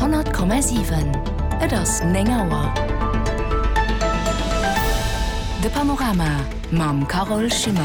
100,7 Et ass 9 Auer. De Panorama mam Carole Schimmer.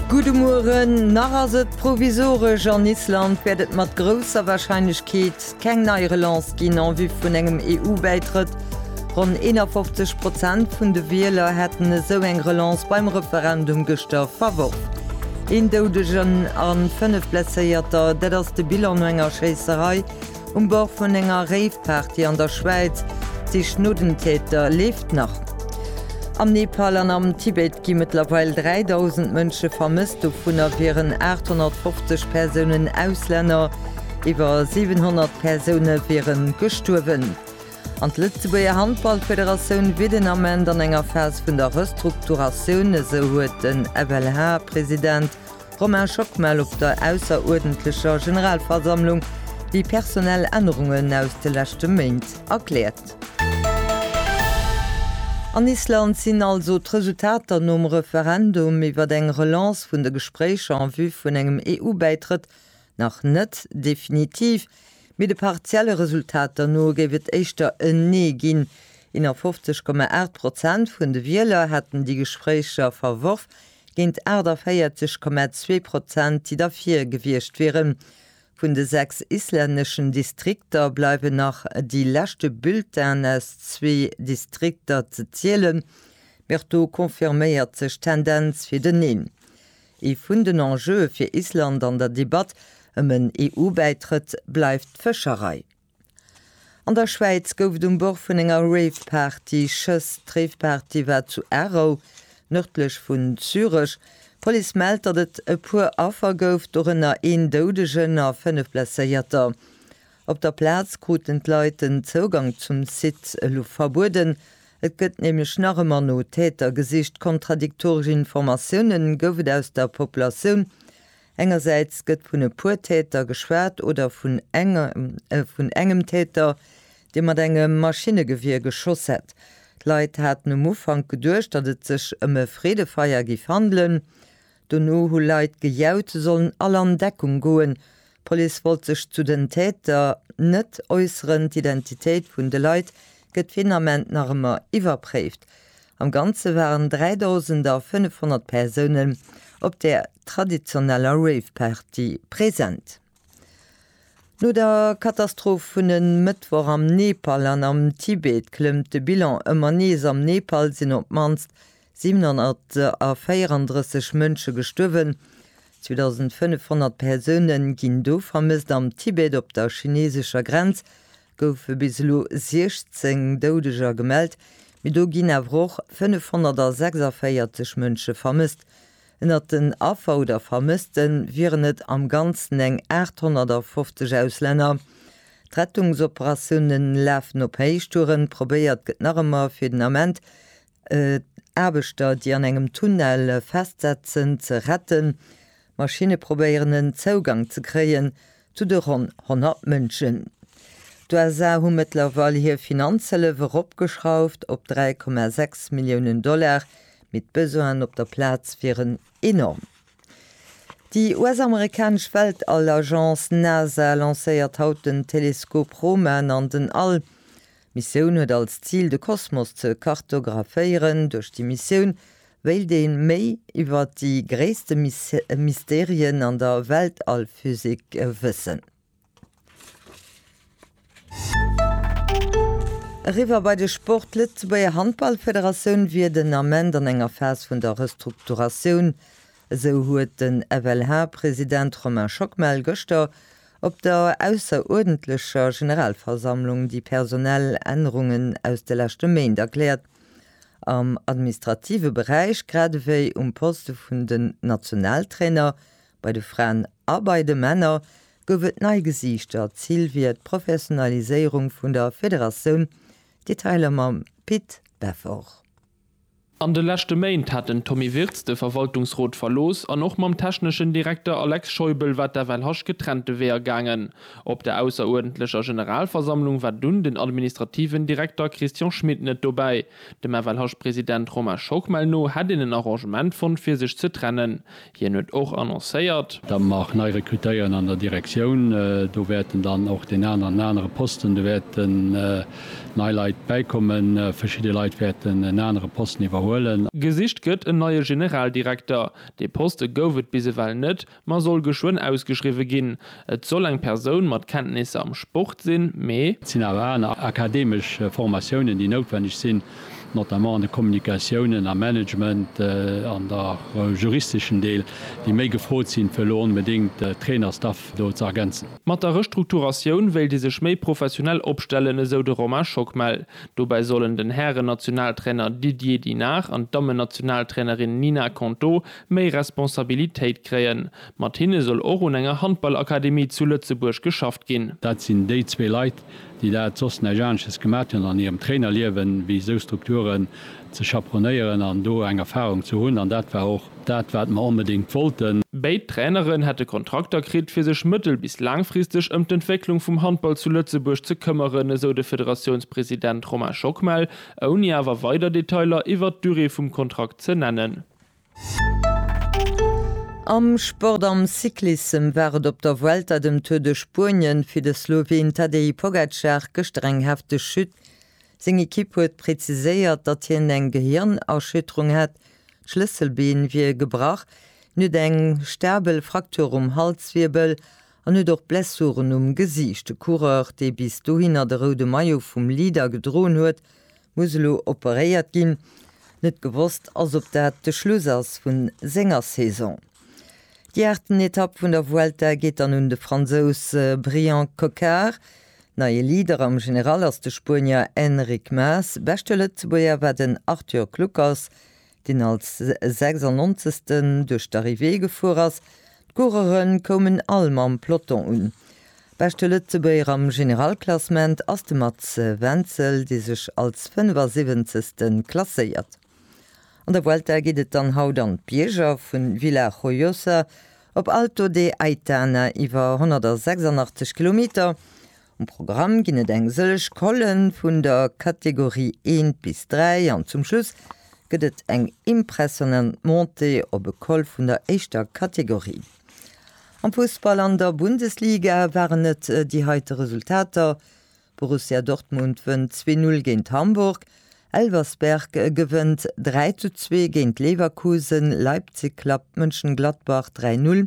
Gudde Mueren. Nach ass et provisoresch. An Island wäert et mat grousser Warscheinlechkeet Keng nei Relancë ginn en vue vun engem EU-Bäitrëtt. Ronn 51 Prozent vun de Wieler hätten esou eng Relance beim Referendum gëschter verworf. Een Doudegen a fënnef Blesséierter, dat ass de Bilan no enger Schéisserei um Bord vun enger Rave-Party an der Schwäiz. D'Sich no den Täter leeft nach. Am Nepal an am Tibet gi mëttlerweil 3.000 Mënsche vermësst, dovunner wieren 850 Persounen Auslänner. Iwwer 700 Persoune wieren gestuerwen. An d'Lëtzebuerger Handballfederatioun wier den Ament an enger Phas vun der Restrukturatioun, esou huet den FLH-President Romain Schockmel op der ausseruerdentlecher Generalversammlung déi personell Ännerungen aus de leschte Méint erkläert. An Island sinn also d'Resultater nom Referendum iwwer eng Relance vun de Gespréicher en vue vun engem EU-Bäitrëtt Nach net definitiv, mee de partielle Resultater no géif et éischter en Nee ginn. 51,8 Prozent vun de Wieler hätten déi Gespréicher verworf, géint 48,2 Prozent, déi derfir gewiescht wieren. Vun de sechs islänneschen Distrikter bleiwen nach déi leschte Bulletinen aus zwee Distrikter ze zielen, mee och do confirméiert sech d'Tendenz fir den Neen. Ee vun den Enjeue fir Island an der Debatt ëm en EU-Bäitrëtt bleift d'Fëscherei. An der Schwäiz gouf et um Bord vun enger Rave-Party Schëss. D'Rave-Party war zu Aarau, nërdlech vun Zürech. D'Police mellt, datt et e puer Affer gouf, dorënner een Doudegen a fënnef Blesséierter. Op der Plaz kruten d'Leit den Zougang zum Site elo verbueden. Et gëtt nämlech nach ëmmer no Täter gesicht. Kontradiktoresch Informatioune gouf et aus der Populatioun. Engersäits gëtt vun e puer Täter geschwat oder vun vun engem Täter, dee mat engem Maschinnegewier geschoss hätt. D'Leit haten um Ufank geduecht, datt et sech ëm e Freedefeier géif handelen. Dono hu Leit gejaut, se sollen all an Deckung goen. D'Police wollt sech zu den Täter net äusseren. D'Identitéit vun de Leit gëtt fir den Ament nach ëmmer iwwerpréift. Am Ganze waren 3.500 Persounen op der traditioneller Rave-Party present. No der Katastroph vun e Mëttwoch am Nepal an am Tibet klëmmt de Bilan ëmmer nees. Am Nepal sinn op d'mannst 734 Mënsche gestuerwen, 2.500 Persoune ginn do vermësst. Am Tibet op der chineesescher Grenz goufe bis elo 16 Doudeger gemellt, mee do ginn awer och 546 Mënsche vermësst. Ënnert den Affer oder Vermësste wieren et am Ganzen eng 850 Auslänner. D'Rettungsoperatioune lafen op Héichtouren. Probéiert gëtt nach ëmmer fir den Ament d'Aarbechter, déi an engem Tunnel festsetzen, ze retten. Maschinne probéieren en Zougang ze kréien, Zu de ronn 100 Mënschen. D'USA hu mëttlerweil hir Finanzhëllef eropgeschrauft op 3,6 Milliounen Dollar, mee d'Besoinen op der Plaz wieren enorm. Déi US-amerikanesch Weltall-Agence NASA lancéiert haut den Teleskop Roman an den All. D'Missioun huet als Zil de Kosmos ze kartographéieren. Duerch déi Missioun wéilt ee méi iwwer déi gréisste Mysterien an der Weltallphysik wëssen. Eriwwer bei de Sport, D'Lëtzebuerger Handballfederatioun wier den Ament an enger Phas vun der Restrukturatioun. Esou huet den FLH-President Romain Schockmel gëschter Op der ausseruerdentlecher Generalversammlung déi personell Ännerungen aus de leschte Méint erkläert. Am administrative Beräich grad ewéi um Poste vun den Nationaltrainer, bei de Fraen a bei de Männer, gouf et nei Gesiichter. Zil wier d'Professionaliséierung vun der Federatioun. Detailer mam Pit Beffort. An de leschte Méint hat den Tommy Wirtz de Verwaltungsrot verlooss an och mam techneschen Direkter Alex Scheubel war d'FLHasch getrennte Weeër gaangen. Op der ausseruerdentlecher Generalversammlung war dunn den administrativen Direkter Christian Schmit net dobäi. Dem FLHasch-President Romain Schockmel no hätt een en Arrangement fonnt fir sech ze trennen. Hien huet och annoncéiert. Datt mer nei rekrutéieren an der Direktioun. Do wäerten dann och deen aneren an anere Posten, do wäerten nei Leit bäikommen. Verschidde Leit wäerten en anere Posten iwwerhuelen. Gesicht gëtt en neie Generaldirekter. Dee Poste gouf et bis ewell net, ma soll geschwënn ausgeschriwwe ginn. Et soll eng Persoun mat Kenntnisser am Sport sinn, mee. Et sinn awer aner akademesch Formatiounen, déi noutwenneg sinn, notamment an de Kommunikatiounen, am Management an och am juristeschen Deel, déi méi gefrot sinn, fir elo onbedéngt de Trainerstaff do ze ergänzen. Mat der Restrukturatioun wéilt ee sech méi professionell opstellen, esou de Romain Schockmel. Dobäi sollen den Hären-Nationaltrainer Didier Dinard an d'Dammen-Nationaltrainerin Nina Konto méi Responsabilitéit kréien. Mat hinne soll och un enger Handballakademie zu Lëtzebuerg geschafft ginn. Dat sinn déi zwee Leit, déi dat soss näischt anesches gemat hunn an hirem Trainerliewen, wéi esou Strukturen ze chaperonéieren an do eng Erfarung ze hunn. An dat war och dat, wat mer onbedéngt wollten. Béid Traineren hätte Kontrakter kritt, fir sech mëttel bis laangfristeg ëm d'Entwécklung vum Handball zu Lëtzebuerg ze këmmeren, esou de Federatiounspresident Romain Schockmel, ouni awer weider Detailer iwwert d'Durée vum Kontrakt ze nennen. Am Sport, am Cyclissem war et op der Vuelta, dem Tour de Spuenien, fir de Sloween Tadej Pogacar gëschter eng hefteg Chute. Seng Ekipp huet präziséiert, datt hien eng Gehirnerschütterung hätt, d'Schlësselbeen wier gebrach. Hien huet eng stabel Fraktur um Halswirbel an huet och Blessuren um Gesiicht. De Coureur, dee bis dohinner de roude Maillot vum Leader gedroen huet, Muss elo operéiert ginn. Net gewosst ass op dat de Schluss ass vu senger Saison. Déi aachten Etapp vun der Vuelta geet dann un de Fransous Bryan Coquard. Neie Leader am General ass de Spuenier Enric Mas. Beschte Lëtzebuerger war den Arthur Kluckers, deen als 96. duerch d'Arrivée gefuer ass. D'Coureuren koumen all mam Peloton un. Beschte Lëtzebuerger am Generalklassement ass de Mats Wenzel, dee sech als 75. klasséiert. An der Vuelta geet et dann haut an d'Bierger vun Villajojosa op Alto de Aitana iwwer 186 Kilometer. Um Programm ginn et eng sëllech Collen vun der Kategorie 1 bis 3 an zum Schluss gëtt et eng impressionant Montée op e Col vun der éischter Kategorie. Am Fussball an der Bundesliga waren et déi heite Resultater, Borussia Dortmund wënnt 2-0 géint Hamburg, Elversberg gewënnt 3-2 géint Leverkusen, Leipzig klappt Mönchengladbach 3-0,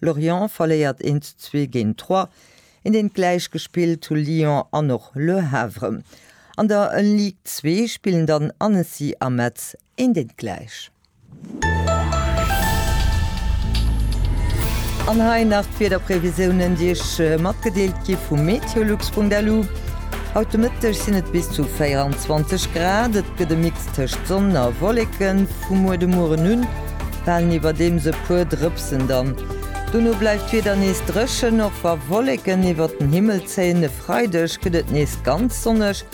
Lorient verléiert 1 zu 2 géint Troyes, een deent gläich gespillt hu Lyon an och Le Havre. An der Ligue 2 spillen dann Annecy a Metz een deent gläich. An hei nach d'Wiederprevisiounen déi iech matgedeelt gi vu meteolux.lu, Haut de Mëtteg sinn et bis zu 24 Grad, et gëtt e Mix tëscht Sonn a Wolleken vu muer de Mueren un. Falen iwwerdeems e puer Drëpsen dann. Dono bleift d'Wieder nees dréchen, och wa Wolleken iwwert den Himmel zéien. E Freideg gëtt et nees ganz sonneg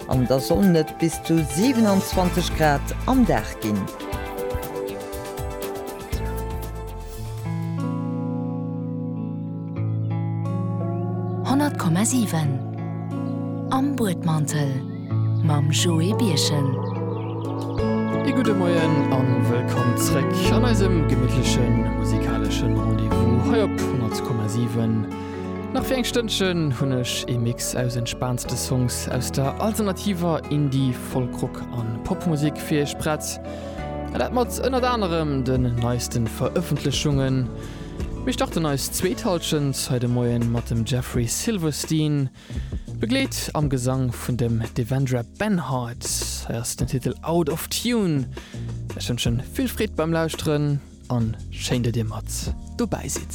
an da sollen et bis zu 27 Grad am Dag ginn. Honnert Komma siwen am Buedmantel. mam Joé Birchen. E gudde Moien a wëllkomm zréck an eisem gemittleche musikaleschen Rendez-vous hei op 100,7. Nach fir eng Stënnchen hunn ech ee Mix aus entspaanste Songs aus der alternativer Indie-, Folk-Rock an Popmusik fir iech prett. An dat mat ënnert anerem den neisten Verëffentlechungen. Mir starten eis zweet Halschent hei de Moien mat dem Jeffrey Silverstein. Begleet am Gesang vun dem Devendra Banhart. Hei ass den Titel Out of Tune. Ech wënschen vill Freed beim Lauschteren an schéin dat dir mat dobäi sidd.